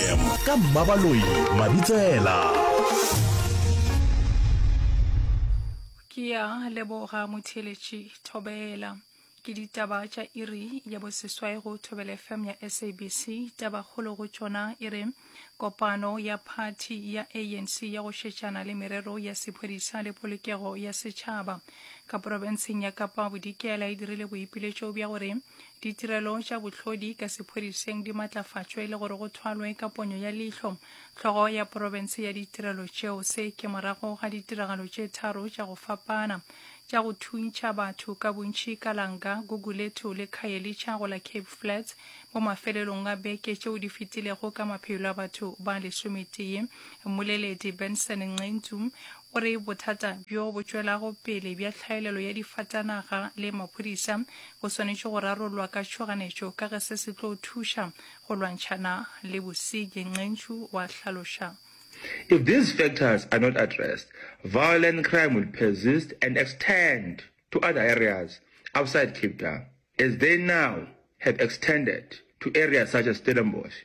FM ka Mmabaloi Mabitsela. Ke ya leboga motheeletši Thobela. Ke ditaba tša iri ya boseswai go Thobela FM ya SABC. Tabakgolo go tšona e re kopano ya phathi ya ANC ya go šetšana le merero ya sephodisa le polokego ya setšhaba ka porofenseng ya Kapa Bodikela e dirile boipiletšo bja gore Ditirelo tša bohlodi ka sephodiseng di matlafatšwe le gore go thwalwe ka ponyo ya leihlo hlogo ya profense ya ditirelo tšeo. Se ke morago ga ditiragalo tše tharo tša go fapana tša go thuntšha batho ka bontši ka Langa, Gugulethu le Khayelitsha go la Cape Flats mo mafelelong a beke tšeo di fetilego ka maphelo a batho ba lesometee. Mmoleledi Benson Nqentsu O re bothata bjo bo tšwelago pele bja tlhaelelo ya difatanaga le maphodisa bo swanetše go rarollwa ka tšhoganetšo ka ge se se tlo thuša go lwantšhana le bosenyi, Nqentsu wa hlaloša. If these factors are not addressed, violent crime will persist and extend to other areas outside Cape Town, as they now have extended to areas such as Stellenbosch.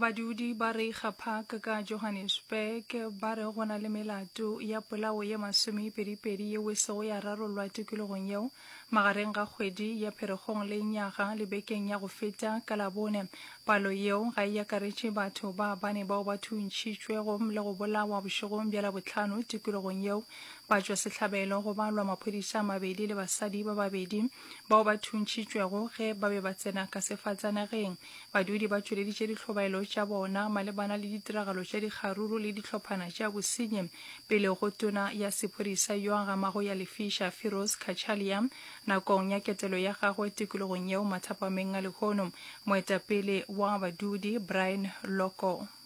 Badudi ba Reiger Park ka Johannesburg ba re go na le melato ya polao ye masomepedipedi yeo e sego ya rarollwa tikologong yeo magareng ga kgwedi ya Pherekgong le Nyaga le bekeng ya go feta ka Labone. Palo yeo ga e akaretše batho ba bane bao ba thuntšhitšwego le go bolawa bošegong bja Labohlano tikologong yeo. Ba tšwa sehlabelo go balwa maphodisa a mabedi le basadi ba babedi bao ba thuntšhitšwego ge ba be ba tsena ka sefatsanageng. Badudi ba tšweleditše dihlobaelo tša bona malebana le ditiragalo tša dikgaruru le dihlophana tša bosenyi pele go tona ya sephodisa yo a gamago ya lefiša Firoz Kachalia nakong ya ketelo ya gagwe tikologong yeo mathapameng a lehono moetapele wa badudi Brian Loko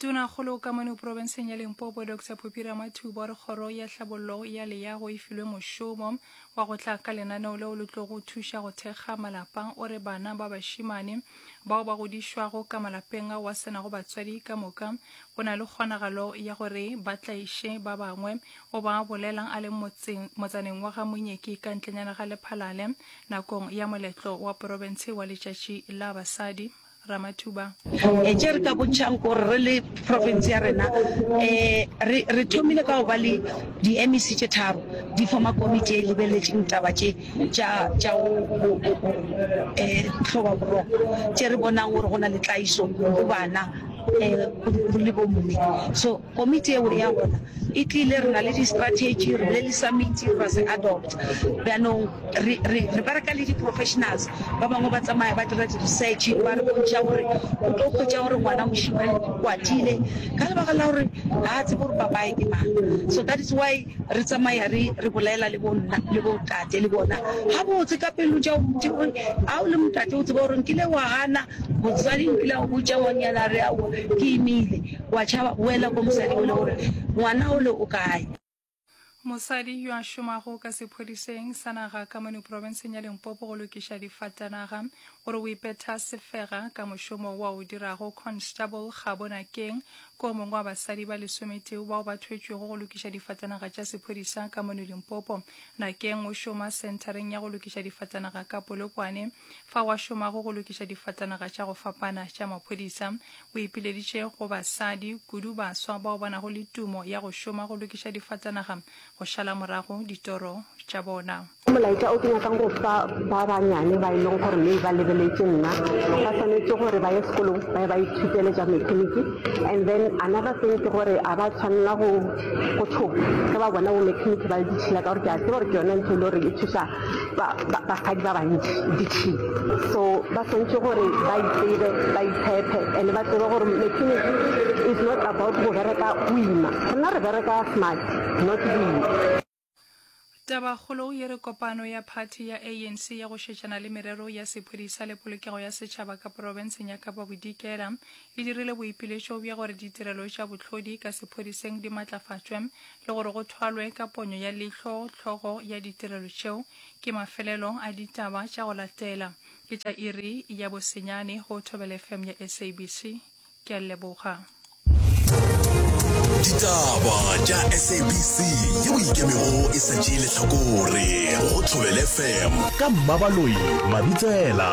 Tonakgolo ka mono porobenseng ya Limpopo Dr Poppy Ramathuba o re kgoro ya tlhabollo ya leyago e filwe mošomo wa go tla ka lenaneo leo le tlogo thuša go thekga malapa. O re bana ba bašimane bao ba godišwago ka malapeng ao a senago batswadi ka moka go na le kgonagalo ya gore ba tlaiše ba bangwe. O ba bolela a le motseng, motsaneng wa ga Monyeki ka ntlenyana ga Lephalale nakong ya moletlo wa porobense wa letšatši la basadi. Ramathuba. Tše re ka bontšhang ke gore re le profense ya rena um re thomile ka go ba le di-MEC tše tharo di foma komiti e lebeletšeng taba tše tša go um hloba boroko tše re bonang gore go na le tlaiso go bana um le bomme so Komiti yeo ya gona e tlile, re na le di-strategy, re bile le summit, ra se adopt. Bjanong re, re, re bereka le di-professionals ba bangwe ba tsamaya ba dira di-research ba re bontšha gore o tlo kgwetša gore ngwana mošimane o kwatile ka lebaka la gore ga a tsebe gore papaye ke mang. So that is why re tsamaya re, re bolela le bonna le bo tate le bona ga botse ka pelo tša botse gore a o le motate o tseba gore nkile wa gana motsadi nkile go botša ngwanyana re ao ke imile O a tšhaba, boela go mosadi ole o re, Ngwana ole o kae? Mosadi yo a šomago ka sephodiseng sa naga ka mono profenseng ya Limpopo go lokiša difatanaga o re o ipetha sefega ka mošomo wa o dirago. Constable Kgabo Nakeng ke o mongwe wa basadi ba lesometee bao ba thwetšwego go lokiša difatanaga tša sephodisa ka mono Limpopo. Nakeng o šoma senthareng ya go lokiša difatanaga ka Polokwane, fao a šomago go lokiša difatanaga tša go fapana tša maphodisa. O ipileditše go basadi, kudu baswa bao ba nago le tumo ya go šoma go lokiša difatanaga, go šala morago ditoro tša bona. Ke molaetša o ke nyakang go fa ba banyane ba e leng gore maybe ba lebeletše nna. Ba swanetše gore ba ye sekolong ba ye ba ithutele tša mekheniki. And then another thing ke gore a ba tshwanela go go tšhoga ge ba bona bo mekheniki ba le ditšhila ka gore ke a tseba gore ke yona ntho e le gore e thuša ba basadi ba bantši ditšhini so ba swantšhe gore ba itsebe ba itshepe and ba tsebe gore maternity is not about go bereka o ima rena re bereka smart not boima Tabakgolo ye re kopano ya phathi ya ANC ya go šetšana le merero ya sephodisa le polokego ya setšhaba ka porofenseng ya Kapa Bodikela e dirile boipiletšo bja gore ditirelo tša bohlodi ka sephodiseng di matlafatšwe le gore go thwalwe ka ponyo ya leihlo hlogo ya ditirelo tšeo. Ke mafelelo a ditaba tša go latela. Ke tša iri ya bosenyane go Thobela FM ya SABC. Ke a leboga. Ditaba tša SABC ye o ikemego e sa tšee lehlakore go Thobela FM ka Mmabaloi Mabitsela.